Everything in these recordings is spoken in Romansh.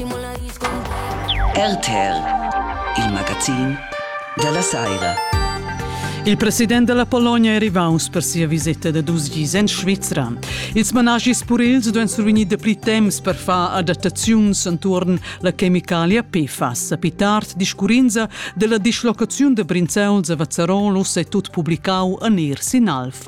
RTR, il magazin dalla Saira. Il president della Polonia è rivaus per sia visita da dus dis en Svizra. Ils managis purils duan survegnir dapli temps per far adattaziuns entuorn la chemicalia PFAS. A pi tard discurrinza della dislocaziun da Brinzauls a Vazzarolos è tut publicau en ir sin Alf.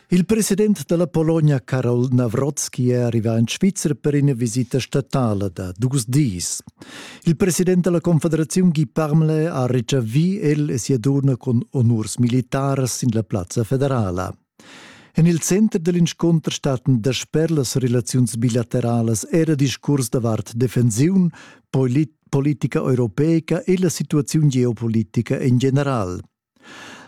Il president della Polonia Karol Nawrocki è arrivato in Svizzera per una visita statale da dus dis. Il president della Confederazione Guy Parmelé ha ricevì el e sia donna con honors militares in la Piazza Federale. En il center dell'incontro statten dasper las relazions bilaterales era discurs davart defensiun, polit politica europeica e la situazione geopolitica in general.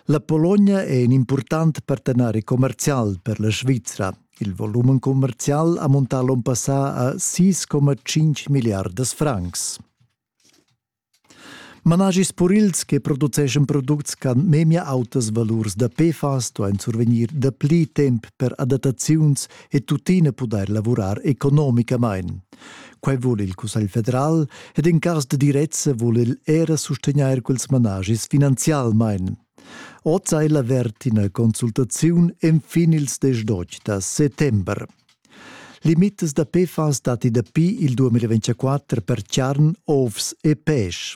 La Pologna è in important partenari commercial per la Svizra. Il volumen commercial ha montà l'onn passà a 6,5 milliardas francs. Managis purils che produceschan products ch'han memia autas valurs da PFAS duain survegnir dapli temp per adattaziuns e tuttina pudair lavurar economicamain, Quai vul il Cussegl federal ed in cas de direzza vul el era sustegnair quels managis finanzialmein. Oz ha el avert ina consultaziun enfin ils 18 da settembre. Limitas da PFAS dati dapi il 2024 per charn, ovs e peisch.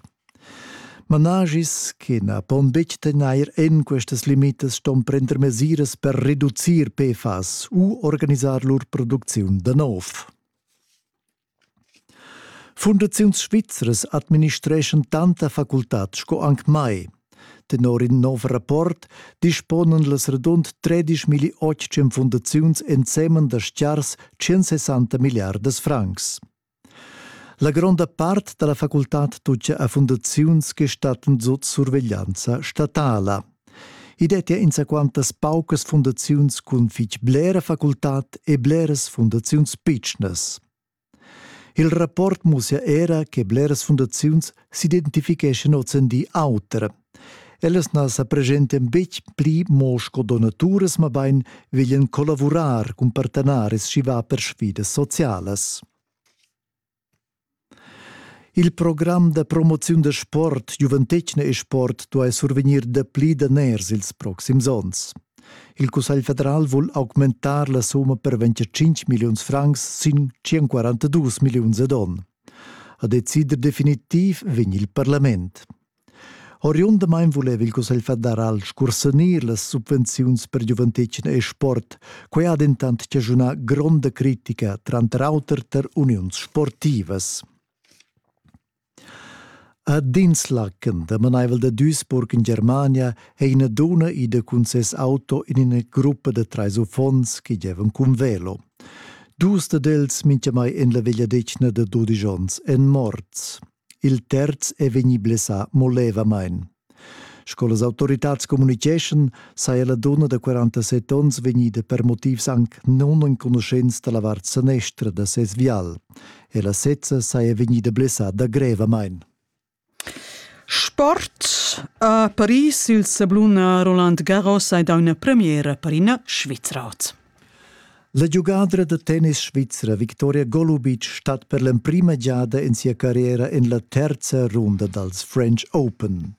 Managis che na pon betg tegnair en questas limitas ston prender mesiras per reducir PFAS u organisar lur producziun da nov. Fundaziuns svizras administreschan tanta facultad sco anc mai. Tenor in nov rapport disponan las radund 13.800 fundaziuns ensemen da stiars 160 milliardas francs. La gronda part da la facultad tutga a fundaziuns che stattan sut surveglianza statala. I dettia insaquantas paucas fundaziuns cun fitg blera facultad e bleras fundaziuns pitschnas. Il rapport mussia era che bleras fundaziuns s'identificheschan ozendi auter. Ellas na sa preschentian betg pli mo sco donaturas, mabain veglian collavurar cun partenaris schi va per sfidas socialas. Il program da promoziun da sport Giuventetgna e sport duai survegnir dapli daners ils proxims onns. Il Cussegl federal vul augmentar la summa per 25 milliuns francs sin 142 milliuns ad onn. A decider definitiv vegn il parlament. Oriundamain vuleva il Cussegl federal scursanir las subvenziuns per giuventetgna e sport. Quai ha dentant chaschunà gronda critica, tranter auter tar uniuns sportivas. A Dinslaken, damanaivel da Duisburg in Germania, è ina duna ida cun ses auto in ina gruppa da trais uffants che gievan cun velo. Dus dad els, mintgamai en la vegliadetgna da dudisch onns, èn morts. Il terz è vegnì blessà mo levamain. Sco las autoritads communitgeschan, saja la dunna da 47 onns vegnida per motivs anc nunenconuschents da la vart sanestra da ses vial. E la sezza saja vegnida blessada grevamain. Sport a Paris il sabluna Roland Garros hai dà una premiera per ina Svizra. La giugadra da tennis svizra Victoria Golubic stat per l'emprima giada en sia carriera en la terza runda dals French Open.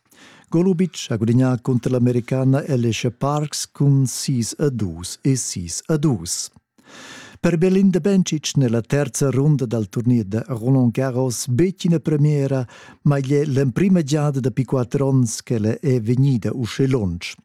Golubic ha gudagnà cunter l'americana Alicia Parks cun 6 a 2 e 6 a 2. Per Belinda Bencic nella terza runda dal turnier da Roland Garros bettina premiera, ma igl è l'emprima giada dapi quatter onns ch'ella è vegnida uscì lunsch.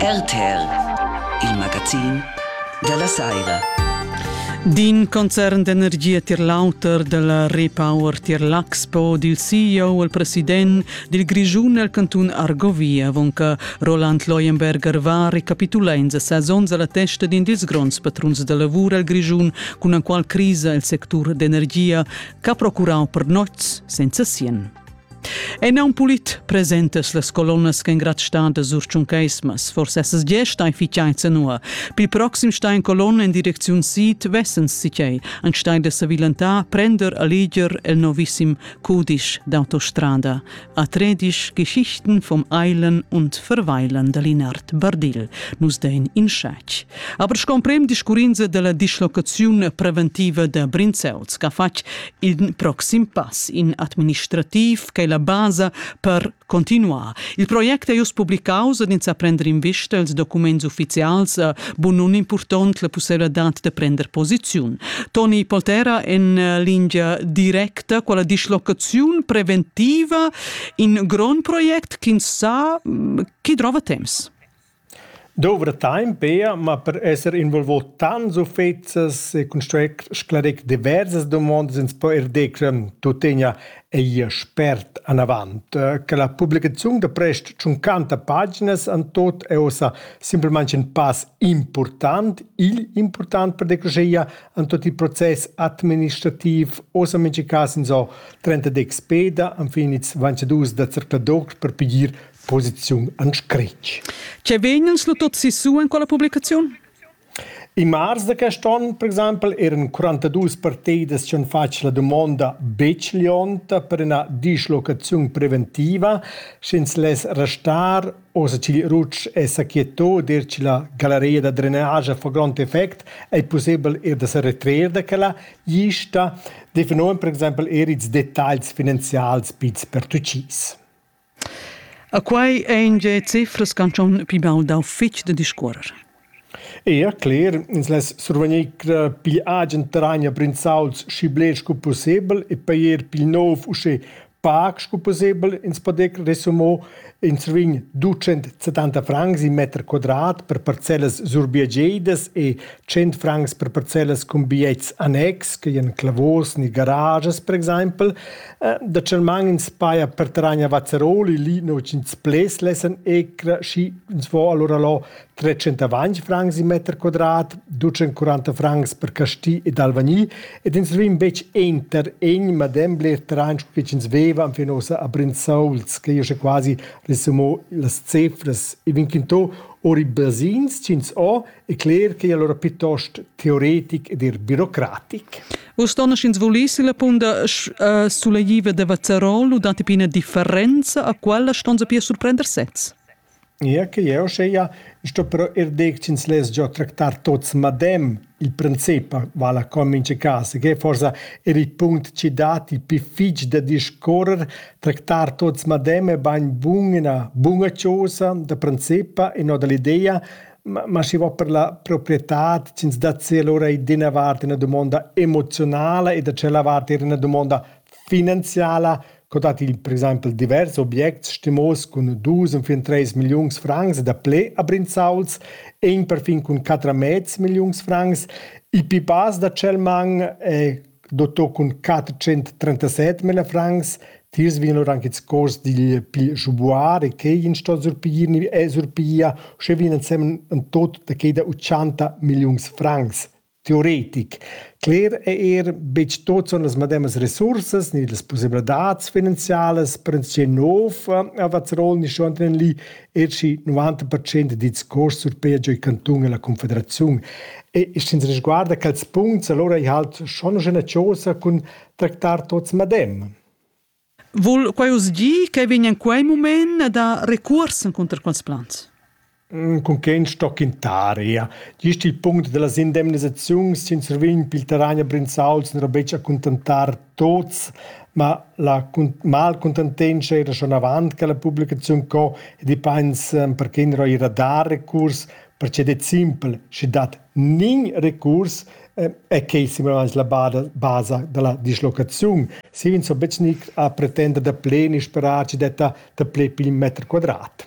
RTL, il magazin della saira. D'in concern d'energia tier l'auter della Repower tier l'Axpo dil CEO el president dil Grischun el cantun Argovia avon che Roland Leuenberger va recapitula in ses onns alla testa d'in dils gronds patruns da lavur el Grischun cun la qual crisa el sectur d'energia che ha procurau per noz senza sien. En aun pulit presentas las colonnas ch'engrazistadas sur tschuncheismas, forse essas gie stai fitgei zenua. Pil proxim stai en colonna en direcziun sid, vessens sitgei, ein stai da savilentar prender a leger el novissim cudisch d'autostrada a tredisch Geschichten vom Eilen und Verweilen de Linard Bardil. Nus dein in schec. Aber scomprem discurrinza della dislocaziun preventiva da Brinzels, che ha fatg il proxim pass in administrativ che è la basa per continuar. Il project è just publicaus ed ins a prender in vista els documents ufficials eh, bun un important la possibilità de prender posiziun. Toni Poltera en eh, linea directa quella dislocaziun preventiva in grond project che sa mm, chi trova temps. Dovra temp pia, ma per esser involvà tants uffects e construir sclarir diversas dumondas ins po er dir che tuttegna ei spert anavant, che la publicaziun da prest tschuncanta paginas en tot è ussa simplamain in pass impurtant, igl impurtant per decreschia en tot il process administrativ, ussa mintga cas ins ho trenta dexpeda, enfin ils ventadus da zercladoc per pigir posiziun an scretg. Ce vegnens lu tot sissu en quella publicaziun? In mars da quest onn, per exempel, eran 42 partidas che han fatg la domanda betg lionta per una dislocazione preventiva, sch'ins less restar o se ch'il Rutsch è sa quieto dir che la galleria da drenage fa grond effect, è possibel er da se retrer da quella lista, definon per exempel er ils dettagls finanzials pits per tucis. A quai ein ge ceflas ch'han schon pli baul dau fetg da discuorer. Ea, cler, ins less survegnir pigl agen terrain a Brinzauls schi bler sco pussebel e pair pil nov uschè pac sco pussebel ins podec resumo ins vegn 270 francs in meter quadrat per parcellas surbiagedas e 100 francs per parcellas cun bigliets annex, che ein clavos ni garages per exempel, Dacheumaing ins paja per terragn a Vazeroli, lì nua ch'ins pleds lessan ecra, schi ins vo alura lo trecentavant francs il meter quadrat, ducenquaranta francs per Casti ed Alvagni ed ins rin betg enter egn madem bler terragn sco ch'ins veva enfin ussa a Brinzauls, che jo sche quasi ressumò las cefras. I vegn quintò ori basins ch'ins ho è cler che è allora piuttost teoretic ed er birocratic. Vus donneschins vulissi la punda uh, suleiva de Vazzarol u dati pina differenza a quella ston sapir surprender sez? Ja, che io sceia, sto però er decins les già tractar tots madem il principe, vala come in caso, che forse è il punto ci dati più fich da discorrer, tractar tots madem è ben bun una bunga cosa da principe e no dall'idea, Ma, ma schi vo per la proprietad chi'ns dat sia lura eir d'ina vart üna dumonda emoziunala e da tschella vart eir üna dumonda finanziala. Co dat il per exaimpel divers obiects stimos cun dus enfin tres milliuns francs daplè a Brinzauls e in perfin cun quatter mez milliuns francs. Il pi bas da tschel man es dotto cun quattrocenttrentaset mille francs tiers vegnan lur anche ils cors digl pli sbuar e quei in sto surpiglir ni e surpiglia sche vegnan ensemen en tot da quei da utschanta milliuns francs teoretic. Cler è er betg tot son las mademas resursas ni las pussebladats finanzialas per en nov a Vazzerol ni schon en lì Eci 90% dils costs surpei giu il cantun e la confederaziun. E sch'ins risguarda quels punts, allora ei halt schon una chausa cun tractar tots madem. Vul quai uss dir che vegn en quei moment da recuors encunter quels plans? Mm, cun quei stoc in taria. Gist il punct della indemnisaziun sin survign pil terragn a Brinzauls non ro betg accontentar tuts, ma la malcontentenscha era schon avant che la publicaziun co ed i pains ehm, perché gnir eir da recurs, perche det simpel, schi dat nin recurs ehm, e quai simplamaing la basa da la dislocaziun. Schi ins ho betg gnir a pretender da pleni sperar chi detta daplè pil meter quadrat.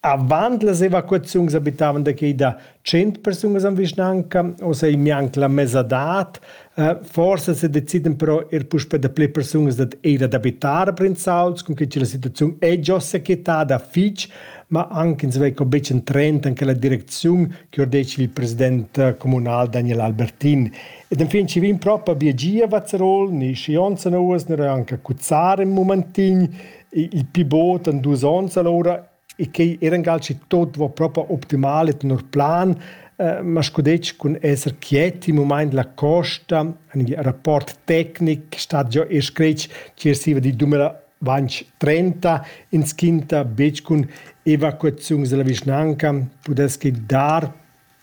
Avant las evacuaziuns abitavan da quei da tschient persunas en vischnanca, ossa ei mianc la mesadad. Forsa sedecidan però er puspei da pli persunas dad era d'abitar a Prinzauls, cunquei che la situaziun ei già sequietada fitg, ma anc ins vei co betg en trend en quella direcziun che ordetg il president communal Daniel Albertin. Ed enfin ci vegn propa bia gia a Vazerol, ni Schionza Nuas, ni anche a Cuzzar in momentin. il pi bod en dus onns allora e quei era in calci tot va propo optimal e tenor plan eh, ma sco detg cun esser quiet in moment la costa in rapport tecnic stat già e scretg cirsiva di dumela 2030 ins quinta bec cun evacuaziuns della vischnanca pudess che dar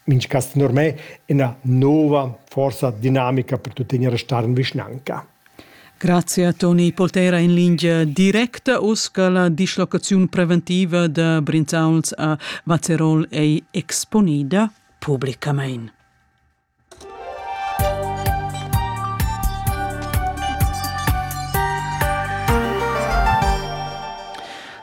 Minchcass tenor me üna nouva forza dinamica per tuttegna restar in vischnanca. Grazia Toni Poltera in lingia directa uss che la dislocaziun preventiva da Brinzauls a Vazerol ei exponida publicamein.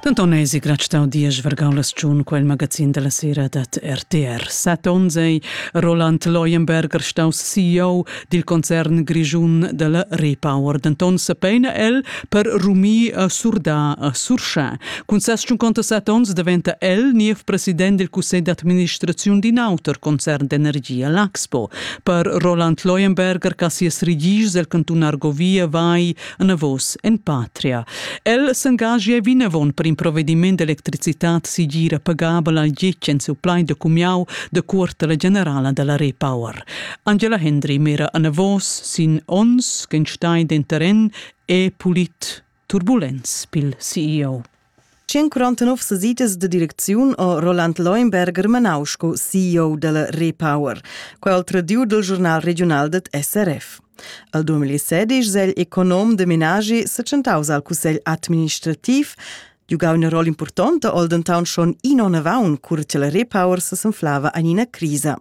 Denton eisi grad stau diesch vargau las tschun quel magazin dalla sera dat RTR. Set onns ei Roland Leuenberger staus CEO dil concern grischun dalla Repower. Denton sepeina el per rumir a surdar a surschar. Cun ses tschunconta set onns daventa el niev president dil cussegl d'administraziun d'in auter concern d'energia, l'Axpo. Per Roland Leuenberger, ca sias rigis el cantun Argovia vai anavos en patria. El s'engagia vinavon per in provvediment d'electricitat sigira pagabel al gitg en supply de cumiau de quartela generala della Repower. Angela Hendry mera anavos sin ons che stai den terren e pulit turbulens pil CEO. 149 sesidas de direcziun ha Roland Leuenberger manau sco CEO della Repower, quel tradiu dal giornal regional det SRF. Al 2016 è il econom de menagi setschentaus al cussegl administrativ, giugau una rolla importante al denton schon inonavon cur che la Repower sesanflava in ina crisa.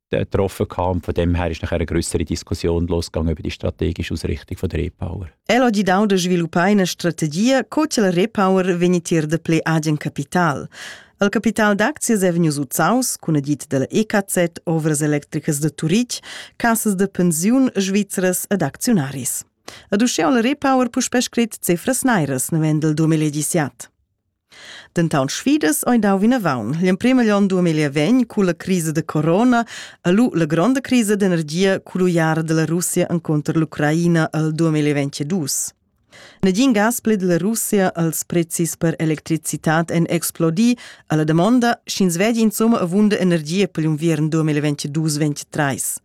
getroffen kam. Von dem her ist nachher eine größere Diskussion losgegangen über die strategische Ausrichtung von der Repower. El ha dau da sviluppar una strategia co che la Repower vegni tier de ple agen capital. Il capital d'aczias è vegnius uzaus cun edit della EKZ, Ovras Electricas de Turitg, Cassas de Pensiun Svizras ed Aktionaris. Ad uschè ha la Repower puspè scrit cifras nairas navend il 2017. Denton sfidas ein dau vinavon. L'emprem egl onn 2020, cu la crisa da corona, ha lu la gronda crisa d'energia cull uiara dalla Russia encunter l'Ucraina el 2022. Negin gas pli dalla Russia als prezis per electricitat ein explodi alla damonda, sch'ins vegli insomma avunda energia per l'unviern 2022-2023.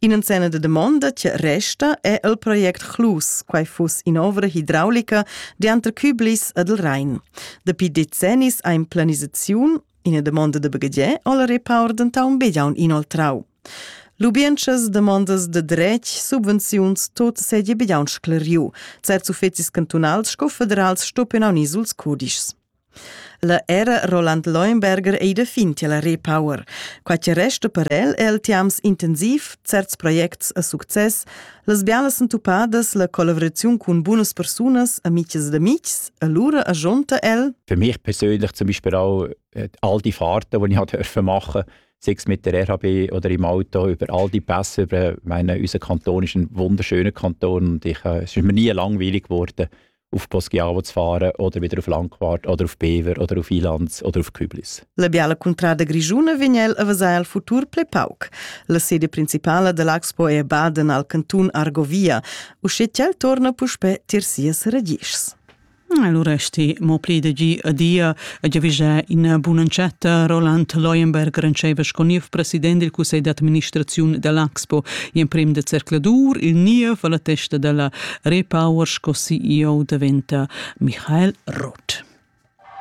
In'enzenna da damonda che resta è il project Chlus, quai fuss in'ovra hidraulica dianter Küblis ed il Rhein. Dapi decennis ha in planisaziun, ina damonda da baghegier o la repaur dentaunt begiaun inoltrau. Lubientschas, demandas de dretg, subvenziuns, tot seigi begiaun scleriu. Certs uffecis cantunals sco federals stoppen aunc ils cudischs. La era Roland Leuenberger ei da fin tiel Repower. Quei che resta per el è il tiams intensiv, certs projects a success, las bialas entupadas, la collaboraziun cun bunas persunas, amiches ed amics, allura agionta el. Für mich persönlich zum Beispiel auch äh, all die Fahrten, die ich durfte machen sei es mit der RHB oder im Auto, über all die Pässe, über meinen, unseren Kanton ist ein wunderschöner Kanton und ich, äh, es ist mir nie langweilig geworden. auf Poschiarvots fahren oder wieder auf Langquart oder auf Bever oder auf Ilanz oder auf Küblis. La biala cuntrada grischuna vegn el a vesar el futur ple pauc. La sede principala da l'Axpo è Baden al cantun Argovia, usce tg'el torna puspe tir sias radischs. Allora sti mo pli de gi adia e giavischà ina bunancetta Roland Leuenberg rentscheva sco niev president del cussegl d'administraziun dell'Axpo e emprem de zercladur il niev alla testa della Repower sco CEO daventa Michael Roth.